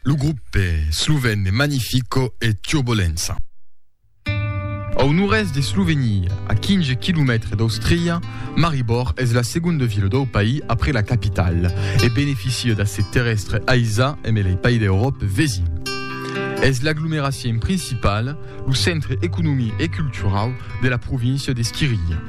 Lo grupe slovèn de Magnifico e Turbolença. Au nòrd-èst de Slovenia, a 15 quilomètres d'Austria, Maribor es la segonda vila dau país après la capitala e beneficia d'accès terrèstre aisat emb lei país d'Euròpa vesin. Es l'aglomeracion principala, lo centre economic e culturau de la província de Schiria.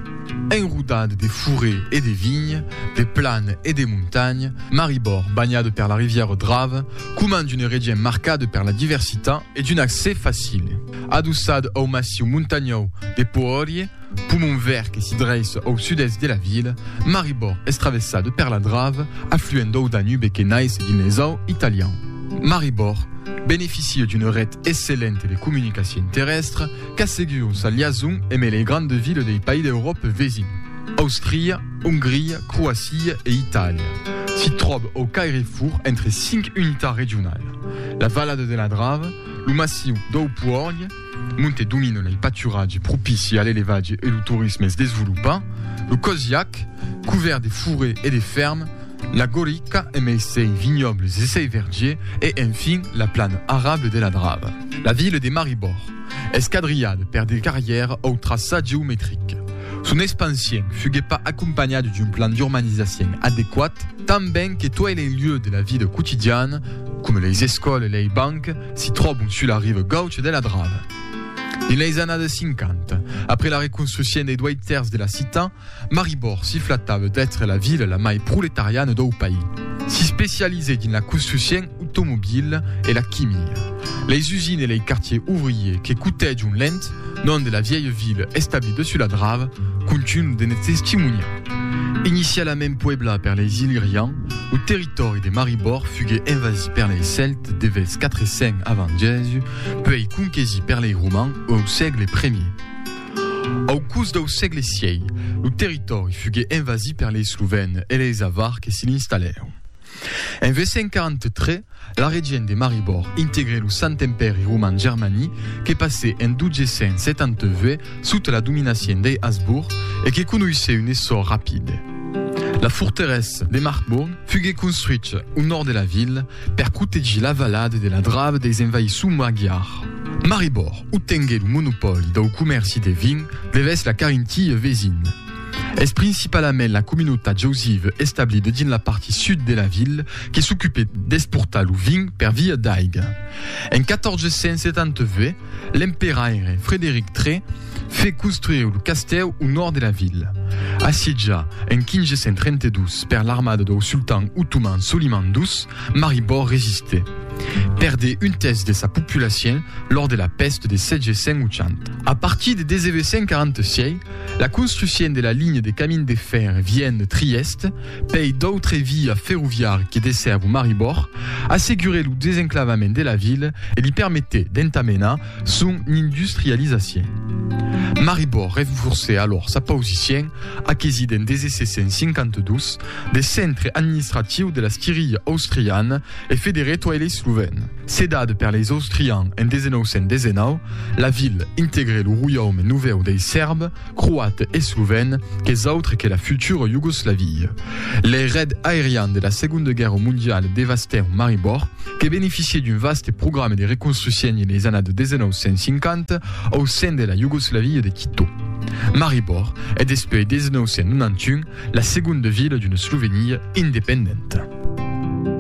Enrodat de forêts e de vignes, de planes e de montagnes, Maribor, banhada per la rivièra Drave, comand une region marcada per la diversitat e d'un accès facile. Adossad au massiu montanhau de Poorje, pomon verd que s'i dreissa au sud-èst de la vila, Maribor es travessada per la Drave, afluent dau Danube que naisse dins l'Esau italian. Maribor beneficia d'una ret excellenta de comunicacion terrèstra Qu'a seguiu sa liason eme lei grande ville dei país d'Euròpe vesin, Austria, Ongria, Croacia e Italia. S'i tròb au cairefur entre cinc unitats regional, la valada de la Drava, lo massiu dau Puòrg, monte domina lei paturatge propici a l'elevatge e lo torisme es desvolopa, lo Cosiac, covèrt de forè e de fèrm, la Gorica emei sei vinhòbles e sei vergier e, enfin, la plana arable de la Drava. La ville de Maribor es quadrilhada per de carrièrs au traçat geometric. Son expansion fuguèt pas acompanhada d'un plan d'urbanisation adequat, tanben que tuei lei lieux de la vida quotidiana, coma leis escòles e lei banques, si tròbon sus la riva gaucha de la Drava. Dins leis annadas 50, après la reconstruccion dei duei tèrç de la citat, Maribor s'i flatava d'èstre la vila la mai proletariana dau país. S'i specializèt dins la construccion automobila e la quimia. Lei usines e lei quartiers ouvriers que cotèjon l'entt nom de la vièlha vila establida sus la drava contunhan de ne testimoniar. Inicialament pueblat per leis Illyrians, lo territòri de Maribor fugué envasit per lei Cèltes de vèrs 400 avant Jèsus, puèi conquesit per lei Romans au sègle premier. Au curs dau sègle sièi, lo territòri fugué envasí per lei Slovèn e leis Avar que s'i l'installèron. En 843, la regent de Maribor integré lo Sant Empèri Roman Germani que passé en 1272 sota la dominacien dei Hasburg e que conoissé un essor rapide. La forteressa de Marcbourg fugué construich au nòrd de la vila Per protegir la valada de la Drava deis envaissons magiars. Maribòr, o tengué lo monopòli dau comèrci de vin devers la Carinthie vesina. Es principalament la comunautat jausiva establida dins la parti sud de la vila que s'ocupèt d'exportar lo vin per via d'aiga. En 1470, L'emperaire Frederic tre fe construire lo castèu au nòrd de la vila. Assietjat en 1532 per l'armada dau sultan otoman Soliman ii, Maribor resistè. Perdè un tèrç de sa populacion lors de la pèst de 780. A partir de 1946, la construcion de la linha de camin de fèrre Vienne-Trièste pei d'autre via ferroviar que dessèvo Maribor, assegurè lo desenclavament de la vila e li permetè d'entamenar son industrializacion. Maribor renforcè alòr sa pausicion aquesi den 1752 de centre administratiu de la Squiria austriana e federè toi lei slovèn. Cedada per leis austrians en 1919, la vila integrè lo roiaume novèu dei Sèrbs, croat e sovent qu'es autre que la futura Iugoslavia. Lei red aerian de la Segonda Guèrra Mondiala devastèron Maribor, que beneficiè d'un vaste programa de reconstruccion en leis annadas 1950 au sen de la Iugoslavia de Tito. Maribor es despui 1991 la segonda vila d'una Slovenia independenta.